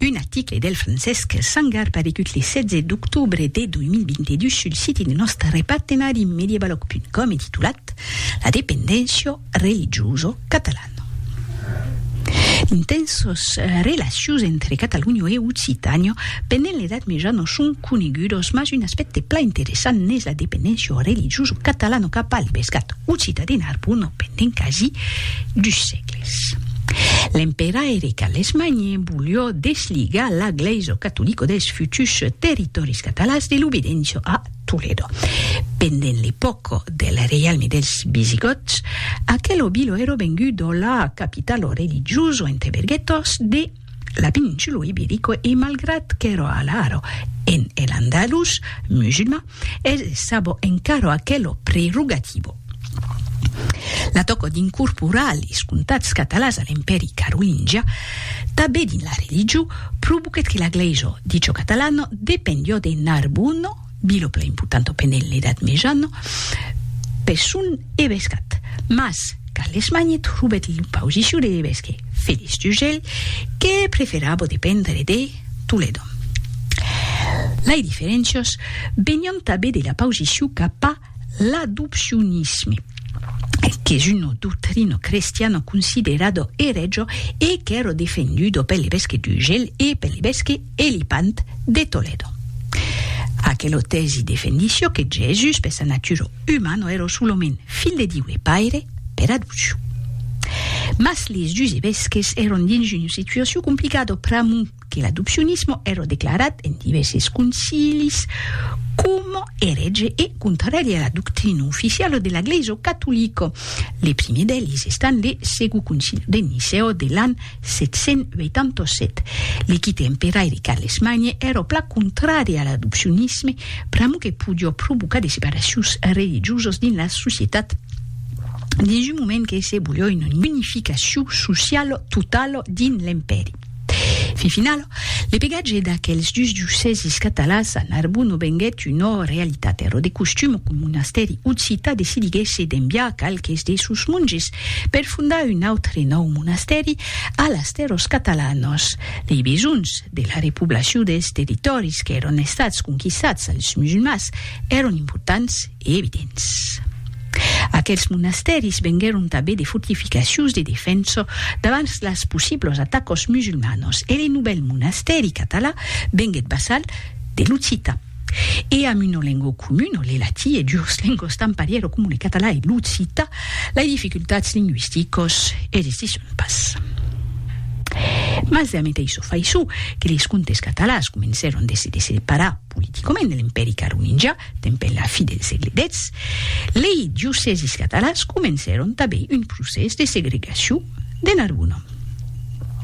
Un aticle del Francesc Sangar paregut le 16 d'octobre de 2022 sul siti de nòste repartenari Medievalog.com e titulat La dependéncia religiosa catalana. D'intensas relacions entre Catalonha e Occitània pendent l'Edat Mejana son conegudas, mas un aspècte plan interessant n'es la dependéncia religiosa catalana cap al pescat occità de Narbona pendent quasi dus sègles. Res. L'empèra Eric a l'Esmanhe volió desligar la glèisa catolica dels fututs territòris catalans de l'obedença a Toledo. Pendent l'epòca del reialme dels Visigòts, aquela vila èra venguda la capitala religiosa entre berguetòs de La Peninsulo Iberico e malgrat qu'èro alharo en El Andalus musulman, es sabo encaro aquelo prerogativo. La tòco d'incorporar les comtats catalans a l'Empèri Carolingia, tanben dins la religion, provoquèt que la glèisa dicho catalano dependió de Narbona, Bilo plan important au penèl l'edat mejana, pes son evescat, mas Carles Magnet robèt lo pausiciu de l'evesque Felix Dugel que preferabo dependre de Toledo. Lai diferéncias venián tabé de la pausiciu cap a L'adopcionisme, qu'es una doctrina crestiana considerada eretja e qu'èra defenduda pel evesque d'Urgell e pel evesque Elipant de Toledo. Aquela tèsi defendissiá que Jesús, per sa natura umana, èra solament Filh de Diu e Paire per adopcion. Mas les dus evesques èran dins una situacion complicada pr'amor que l'adopcionisme èra declarat en divèrses concilis coma erètge e contràri a la doctrina oficiala de la Glèisa catolica. Le primièr d'eles estant le Segond Concili de Nicèa de l'an 787. Le quite emperaire Carles Magne èra plan contràri a l'adopcionisme pr'amor que podiá provocar de separacions religiosas dins la societat dins un moment que se voliá una unificacion sociala totala dins l'empèri. Fin final, l'epegatge d'aquels dus diocèsis catalans a Narbon non venguèt una realitat. Èra de costum qu'un monastèri occità decidiguèsse d'enviar qualques de sos monges per fondar un autre nòu monastèri a las tèrras catalanas. Lei besonhs de la repoblacion dels territòris qu'èran estats conquistats als musulmans èran importants Evidents. Aquels monastèris venguèron tanben de fortificacions de defensa davant las possiblas atacas musulmanas e le novèl monastèri català venguèt vassal de l'occitan e amb una lenga comuna, le latin, e duas lengas tan parièra coma le català e l'occitan, lai dificultats lingüisticas existisson pas. Mas la meteissa faiçon que les comtes catalans comencèron de se desseparar, politicament de l'Empèri carolingià, dempuèi la fi del sègle xix, lei diocèsis catalans comencèron tanben un procès de segregacion de Narbona.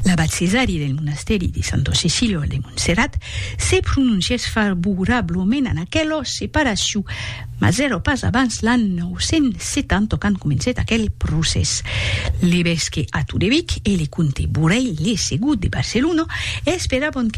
L'abat Cesari del monastèri de Santa Cecilha de Montserrat se prononcièt favorablament an aquela separacion, mas èra pas abans l'an 970 qu'an comencèt aquel procès. L'evesque Atto de Vic e le comte Borelh, le segon de Barcelona, esperavan que